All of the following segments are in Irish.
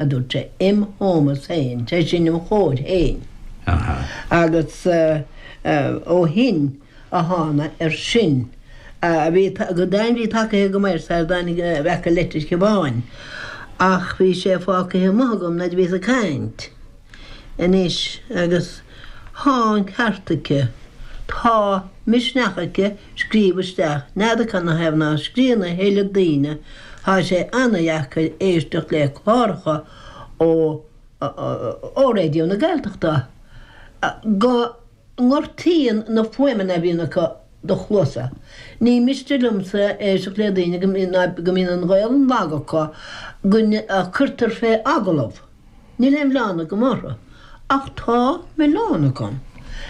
a dúirt sé, im hómós féin, sé sin, im chomhair féin. Agus ó shin amháin, ar sin a bhí go daingean, bhí tacaithe go maith ar Said Daniel a bheith i Leitir Sheabáin, ach bhí sé fágtha amuigh agam nuair a bhíos ag caint. Anois, agus. Tá an ceart aici. Tá misneach aici scríobh isteach n'fheadar cad ina thaobh ná scríobhann a thuilleadh daoine. Tá sé an-dheacair éisteacht le cláracha ó ó Raidió na Gaeltachta go ngortaíonn na fuaimeanna a bhíonn acu do chluasa. Ní miste liomsa éisteacht le daoine go mbíonn an Ghaelainn lag acu go gcuirtear fé agallamh. Níl aon mhilleán agam orthu, ach tá milleán agam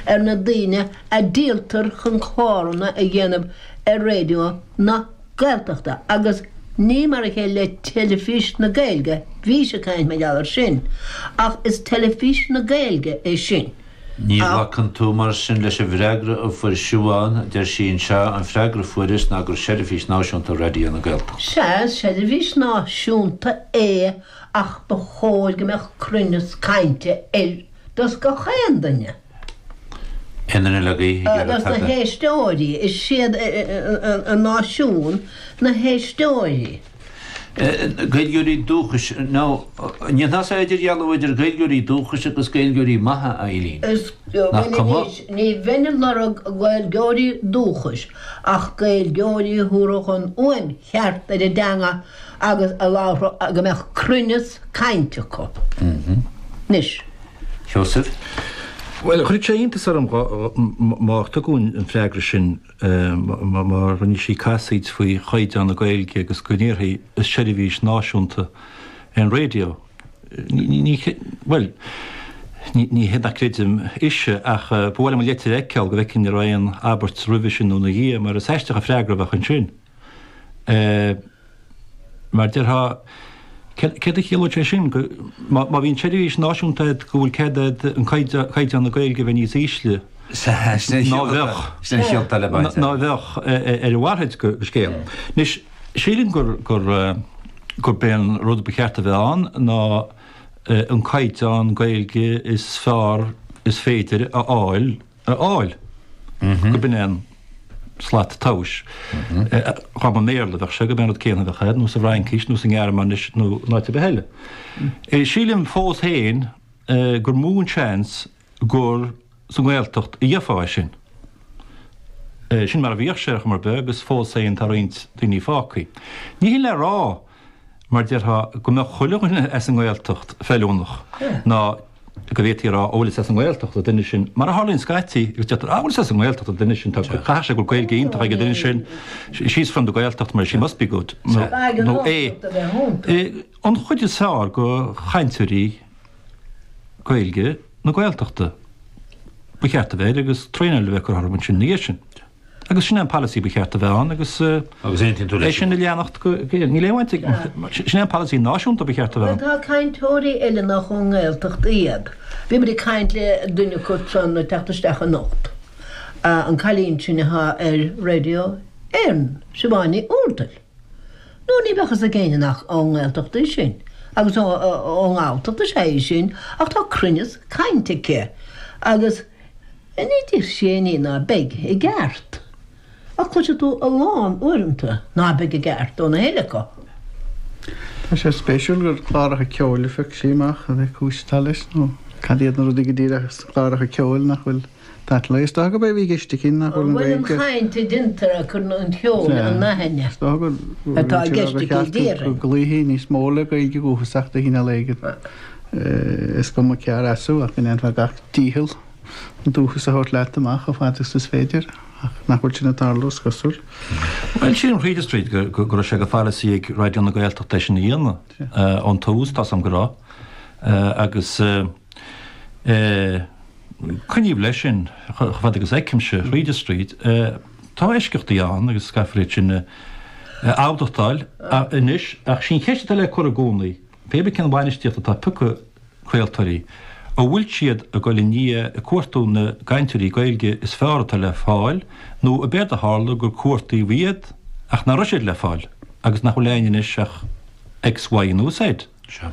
ar na daoine a dhíoltar chun cláranna a dhéanamh ar Raidió na Gaeltachta agus ní mar a chéile le Teilifís na Gaeilge, bhís ag caint mar gheall ar sin, ach is Teilifís na Gaeilge é sin. Ní, glacann tú mar sin leis an bhfreagra a fuair Siobhán, a deir sí anseo, An freagra a fuaireas ná gur seirbhís náisiúnta Raidió na Gaeltachta. Sea, is seirbhís náisiúnta é. ach ba chóir go mbeadh cruinneas cainte ar dtús ag gach aon duine. Agus na héisteoirí, is iad an náisiún na héisteoirí. Gaeilgeoirí dúchais, nó an bhfuil idirdhealú idir Gaeilgeoirí dúchais agus Gaeilgeoirí maithe, a Eileen? Ní bheinn ag lorg Gaeilgeoirí dúchais, ach Gaeilgeoirí a thabharfadh an fhuaim cheart ar a dteanga agus a labharfadh a go mbeadh cruinneas cainte acu anois. Sheosaimh. Bhuel, chuirfeadh sé iontas orm má tugadh an freagra sin má rinne sí casaoid faoi chaighdeán na Gaeilge agus go ndéarfaí is seirbhís náisiúnta an raidió. Bhuel, ní hé nach gcreidim ise ach ba mhaith liom an leitir a fheiceáil go bhfeicfinn an raibh aon abairt roimhe sin nó ina dhiaidh mar is aisteach an freagra a bheadh ansin. Mar déarfá, céard a chiallódh sé sin? Má bhíonn seirbhís náisiúnta agat, go bhfuil cead agat caighdeán na Gaeilge a bheith níos ísle? Ná bheadh. Ná bheadh, ar a mhalairt de scéal. Anois, sílim gurb é an rud ba cheart a bheith ann ná an caighdeán Gaeilge is fearr is féidir a fháil a fháil, go b'in é an slat tomhais. Dhá mba i mBéarla a bheadh sé, go b'é an rud céanna a bheadh ann, nó sa bhFraincís, nó sa nGearmáinis, nó in áit ar bith eile. Sílim fós féin gur mó an seans gur sa nGaeltacht a gheofá é sin. Sin mar a bhíodh sé, ar chuma ar bith, agus fós féin tá roinnt daoine fágtha. Ní hin le rá mar déarfá, go mbeadh chuile dhuine as an nGaeltacht feiliúnach, ná go bhféadfaí a rá, ó bhuel is as an nGaeltacht an duine sin, mar a tharlaíonn scaití, agus deirtear, á bhuel is as an nGaeltacht an duine sin, caithfidh sé go bhfuil Gaeilge iontach ag an duine sin, she's from the Gaeltacht, mar she must be good, nó, é, an chuid is fearr de chainteoirí Gaeilge na Gaeltachta, ba cheart a bheith air agus traenáil a bheith curtha orthu ansin ina dhiaidh sin. Agus sin é an polasaí ba cheart a bheith ann agus é sin a leanacht go géar. Níl aon bhaint ag, sin é an polasaí náisiúnta ba cheart a bheith ann. Má tá cainteoirí eile nach ón nGaeltacht iad, bhíomar ag caint le duine acu san ag teacht isteach anocht, an cailín sin atá ar Raidió Éireann, Siobhán Ní Úrdail. Nó ní bheadh fhios ag éinne nach ón nGaeltacht í sin, agus ón nGalltacht is ea í sin, ach tá cruinneas cainte aici agus, Ní deir sé ní ná beidh i gceart. Ach cloisfidh tú a lán uaireanta ná beidh i gceart ó na héinne acu. Tá sé spéisiúil gur cláracha ceoil a phioc sí amach pé cúis atá leis nó cad iad na rudaí go díreach sna cláracha ceoil nach bhfuil sásta leo. Is dócha gurb é a bhí i gceist aici nach bhfuil an chaint a deintear ag cur an cheoil in aithne gur cheart go gcloífí níos mó le Gaeilge dhúchasach de chineál éigin. Is cuma cé as thú ach go ndéanfá gach dícheall an dúchas a thabhairt leat amach chomh fada is is féidir, ach nach bhfuil sin ag tarlú, is cosúil. Bhuel, sílim tríd is tríd go raibh sé de pholasaí ag Raidió na Gaeltachta é sin a dhéanamh ón tús, tá 's agam go raibh, agus coinníodh leis sin chomh fada agus a fheicimse, tríd is tríd. Tá eisceachtaí ann agus caithfear iad sin a admhachtáil anois ach sí an cheist atá le cur i gcónaí. Pébí cén bhainistíocht atá ag toghadh craoltóirí, an bhfuil siad ag dul i ndiaidh ag cuartú na gcainteoirí Gaeilge is fearr atá le fáil nó ab éard a tharla gur cuartaíodh iad ach nach raibh siad le fáil agus nach bhfuil ann anois ach X, Y nó Z? Seo.